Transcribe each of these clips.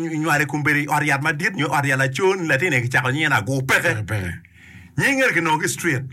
inywalo i kom bedo i ot yat madit nyo ot yat laco ni latin aye kicako nyinge ni Agur peke. Peke peke. Nying eni kinongo ki i street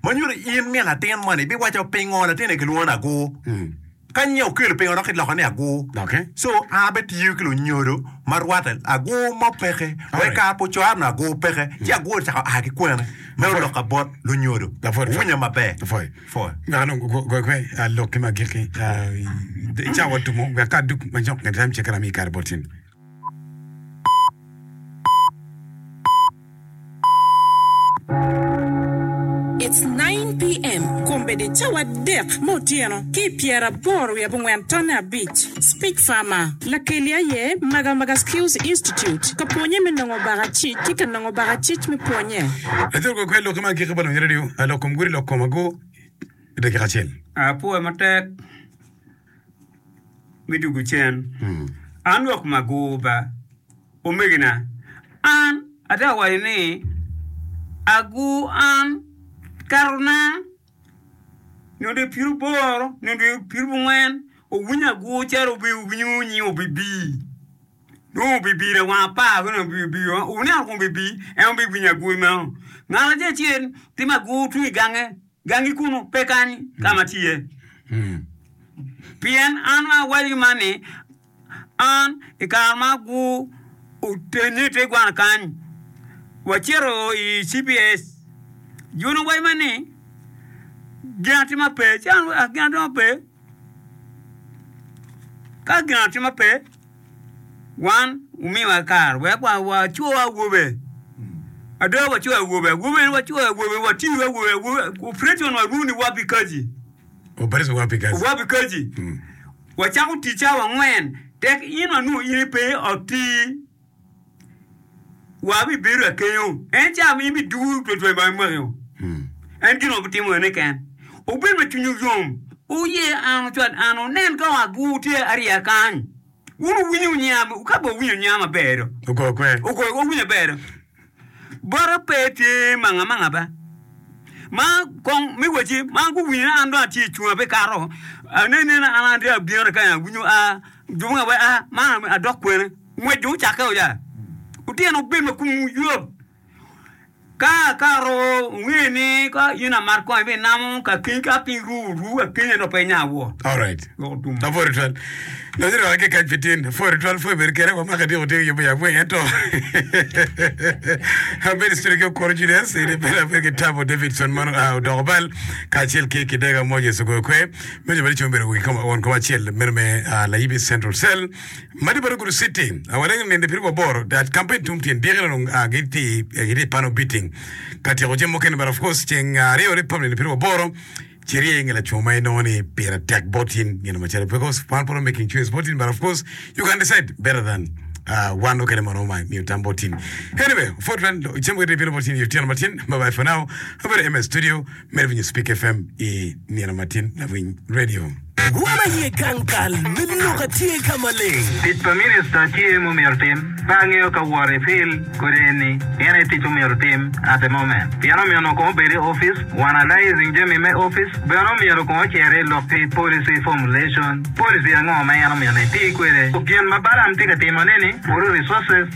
ma nyuto in min latin moni ibiwaco pingo latin eni kilwongo ni Agur. Mm. Ka nyinge okelo pingo dok iloko ni Agur. Doki. So an abitiyo ki lunyodo ma rwatte Agur mo peke. Wa i Alright. kare pa ocoro ni Agur peke ci Agur ocako a ki kwene me Lapwony. olok ka bot lunyodo. Lapwony. Owinya maber. Lapwony. Pol ngat onongo goyo kwe lok ki ma gikki i cawa tumo wek ka duk ma jok gitam ceke rami i kare bot cen. It's nine PM, kun bed i cawa adek me otyeno ki i pyeraboro wiye abongwen tonne abic. Speech Farmer, Lakeli aye Maga Maga Skills Institute ka pwonye me nongo baka cic ki ka nongo baka cic me pwonye. Lacen kwe kwe lokke ma agikki pa lonyere aryo, lok kom gudo lok kom ago i dakika acel. Apwoya matek me dugu cen. An lok ma ago ba, omegina. An atera waco ni ago an kato na. nyo dwe piruboro nyo dwe pirubungwen owiny agur calo obeo winyo ni obibi dong obibi lawang apar kune obibi oneno kong obibi en aye obinyo agur meno ngat acel acel timo agur tung i gange gangi kunu pe kany ka ma tye pien an awaco man ni An, i kare ma gu oteni i te gwana kany, wa cito i CPS. Jun owaco ma ni, Gin atima pe. Ci an owaco, Gin atima pe? Ka gin atima pe, wan wu miwa kare wek wa wa co awobe. Ada wa co awobe, awobe ni wa co awobe, wa tiyo awobe, awobe, operation wa runi wa pi kaci. Operation wa pi kaci. Wa pi kaci. Wacako tic cawa angwen tek in wanongo in ipe i ot ti wa bi bedo akenyo en cawa ma in bi duru twel twel ba imakio en gin obi timo ene ken obed ma cwinyu yom uye an ucwad an unen ka ot bu tye ariya kany un uwinyo niya ka bo uwinyo niya maber do ugoyo kwer ugoyo owinyo aber do Bota pe tye manga manga ba. Ma kong mi waci ma guwinyo an dong atye cunga pe kato. Ane nena an an abino ni kanya winyo a jubo nga we a ma adok kwene. Ngwec dong ocakke o ya. Utino obed ma kum yot. Ka ka ro nge ni ka in amat kong ibi namo ka kiny ka piny ru ru akiny ento pe inya wot. Alright. Lapwod twal nonyo dong atye kac pi tin pwod twal pwod bedo kene wa maka dyeko tye yubo ya bweng ento abedo cwiny ki okuru Julius ini bene abedo ki Tabo Davidson ma ah, odoko bal kacel ki Kidega Moses ogoyo kwe meja bene cung bedo wigi koma won koma acel meno me ah, Layibi Central Cell madi bado Gudo City ah, waleng ninde piri wa boro that campaign tum tyen dyeki dong ah, giti eh, giti pano biting ka tyeko jami mukene but of course ceng ah, aryo Republic ninde piri wa boro Ci rye nge laco ma inongo ni pire tek bot in gin macalo because kwan pe oromo making choice bot in but of course you can decide better than uh, wan nokene ma romo miyo tam bot in. Anyway, Fort Ran cam wede bino bot in i otyeno matin. Bye bye for now. Abedo MS Studio, medo winyo Speak FM i nino matin lawiny radio. Gwom aye gang kal me lok a tye ka maleng. Tic pa minista tye mumito tim. Pe angeyo ka wot i fil kodi eni gin aye tic mumito tim at the moment pien omyeno kong obed i office wa analyzing jami me office bene omyero kong ocer i lok ki policy formulation policy ango ma en omyeno eti kwede ku gin ma Balam tye ka timo neni water resources